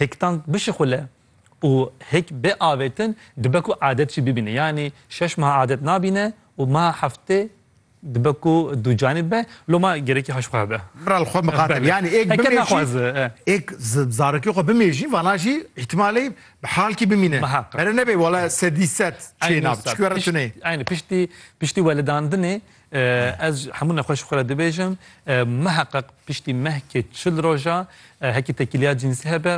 Hêktan bişixule û hêk bê avêtin dibe ku adet jî bibîne. Yanî şeş meha adet nabîne û meha heftê dibe ku dûcanî be. Lo ma gerekî haşt xwe be. Bira li xwe miqate be. Yanî hêk bimêjî, hêk zarokê xwe bimêjî vana jî îhtîmalê bi halkî bimîne. Pere nebe wele sedî sed çê nabe. Çikû were tuneyê. Eynî piştî piştî welidandinê Ez hemû nexweşî xwe re dibêjim. Miheqeq piştî mehkê çil roja hekî tekîliya cînsî hebe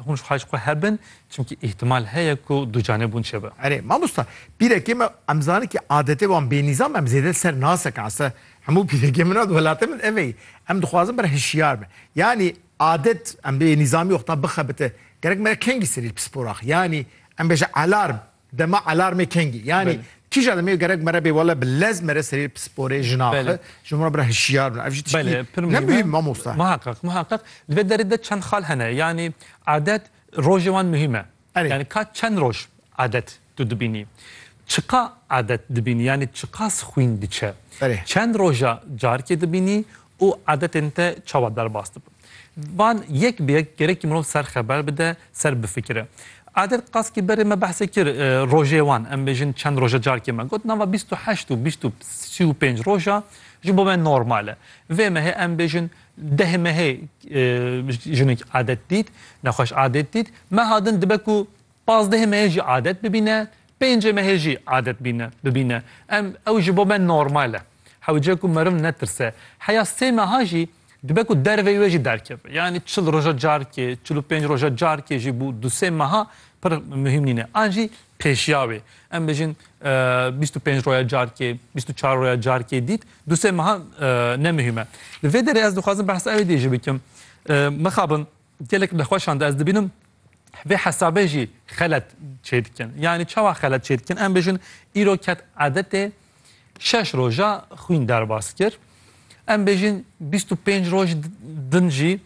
hûn ji xwe ji xwe hebin çimkî îhtimal heye ku ducanebûn çêbe. Erê mamosta pîrekê me em zane kî adetê wan bênîzam em zêde ser nasek ase hemû pîrekê min û welatê min ev eyî. Em dixwazin ber hişyar bin. Yanî adet em bênîzamî wexta bixebite gerek me re kengî serî li pisporaxî. Yanî em bêje alarm Dema alarmê kengî yanî kîja demê gerek mere bê wele bi lez mere serê pisporê jinaxi ji wan re bira hişyar bin ev jî tiştî ne muhîm mamosta. Muheqeq muheqeq li vê derê de çend xal hene yanî adet rojê wan muhîm e yanî ka çend roj adet tu dibînî çiqa adet dibînî yanî çiqas xwîn diçe çend roja carikê dibînî û adetên te çawa derbas dibin. Van yek bi yek gerekî mirov ser xeber bide, ser bifikire. Adil Kaskî berê me behsê kir rojê wan, em bêjin çend roja carkê me got nava bîst û heşt û bîst û sî û pênc roja ji bo me normal e. Vê mehê em bêjin deh mehê jinik adet dît, nexweş adet dît, meha din dibe ku Pazdehê me jî adet bibîne, pêncê me hê jî adet bîne bibîne. Em ew ji bo me normal e. Hewce ku meriv netirse. Heya sê meha jî dibe ku derveyî wê jî derkeve. Yanî çil roja carkê, çil û pênc roja carkê jî bû du sê meha pir muhîm nîne. An jî pêşiya wê. Em bijîn bîst û pênc roja carkê, bîst û çar roja carkê dît du sê meha ne muhîm e. Li vê derê ez dixwazim behsa wê dê jî bikim. Mixabin. Gelek nexweşan de ez dibînim vê hesabê jî xelet çêdikin. Yanî çawa xelet çêdikin? Em bijin îro ket edetê şeş roja xwîn derbas kir. Em bêjin 25 roj din jî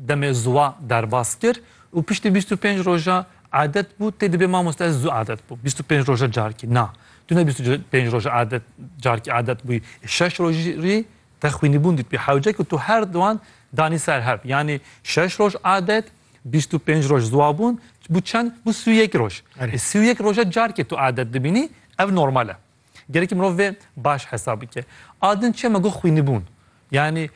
demê zuwa derbas kir û piştî 25 roja adet bû tê dibê mamoste ez zû adet bû 25 roja carkî na tu ne 25 roja adet carkî adet bûyî şeş rojî Te xwînîbûn dîtbî hewce ku tu her wan danî ser hev. Yanî şeş roj adet, bîst û pênc roj ziwabûn, bû çend? Bû sî û yek roj. Erê sî û yek roja carkê tu adet dibînî, ev normal e. Gerekî mirov vê baş hesab bike. A din çi ye? Me got xwînîbûn. Yanî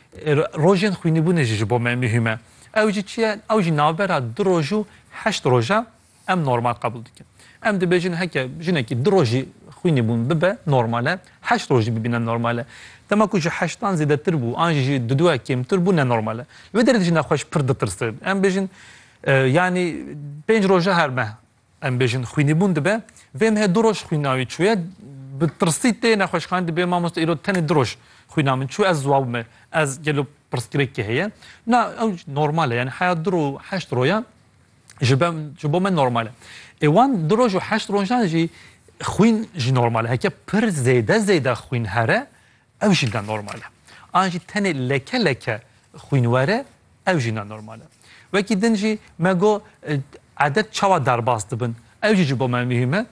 rojên xwînîbûnê jî ji bo me mihîm e. Ew jî çi ye? Ew jî navbera du roj û heşt roj e. Em normal qebûl dikin. Em dibêjin heke jinekî du rojî xwînî bûn bibe normal e, heşt roj jî bibîne normal e. Dema ku ji heştan zêdetir bû an jî ji duduya kêmtir bû ne normal e. Li wê derê de jina xwe ji pir ditirse. Em bêjin yanî pênc roja her meh em bêjin xwînî bûn dibe. Vê mehê du roj xwîna wî çûye. Bi tirsî tê nexweşxanê dibê mamoste îro tenê du roj xwîna min çû ez ziwa bime. Ez gelo pirsgirêkî heye. Na ew normal e yanî heya du ro heşt roya ji ben ji bo me normal e. Ê wan du roj û heşt rojan jî xwîn jî normal e. Heke pir zêde zêde xwîn here ew jî ne normal e. An jî tenê leke leke xwîn were ew jî ne normal e. Wekî din jî me got edet çawa derbas dibin ew jî ji bo me muhîm e.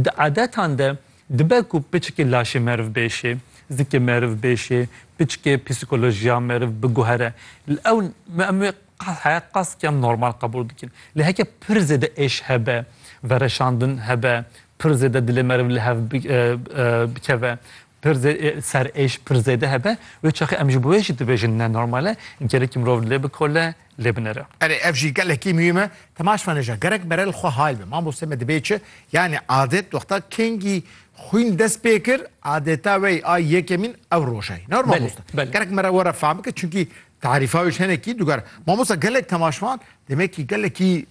Di edetan de dibe ku piçikê laşê meriv bêşê, zikê meriv bêşê, piçikê psîkolojiya meriv biguhere. Li ew em ê Heyet qasdkiyan normal qebûl dikin. Lê heke pir zêde êş hebe, vereşandin hebe, pir zêde dilê meriv li hev bikeve, pir serêş pir zêde hebe, wê çaxê em ji bo wê jî dibêjin ne normal e, gerekî mirov lê bikole, lê binere. Erê ev jî gelekî muhîm e. Temaş me neja. Gerek mere li xwe hal be. Mamosteyê me dibê çi? Yanî adet wexta kengî xwîn dest pê kir, adeta wey a yekemîn ew roja ye. Ne mamoste. Gerek mere were fam bike. Çimkî Tarîfa wê ji hinekî dugere. Mamosta gelek temaşvan demekî gelekî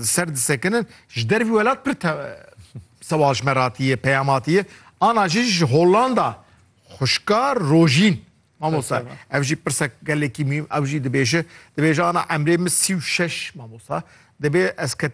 ser disekinin ji dervî welat pir sewal ji me ratiye peyam hatiye ana jî ji Hollanda xuşka Rojîn mamosta ev jî pirsa gelekî mîm ew jî dibêje dibêje ana emrê min sî û şeş mamosta dibê ez ketim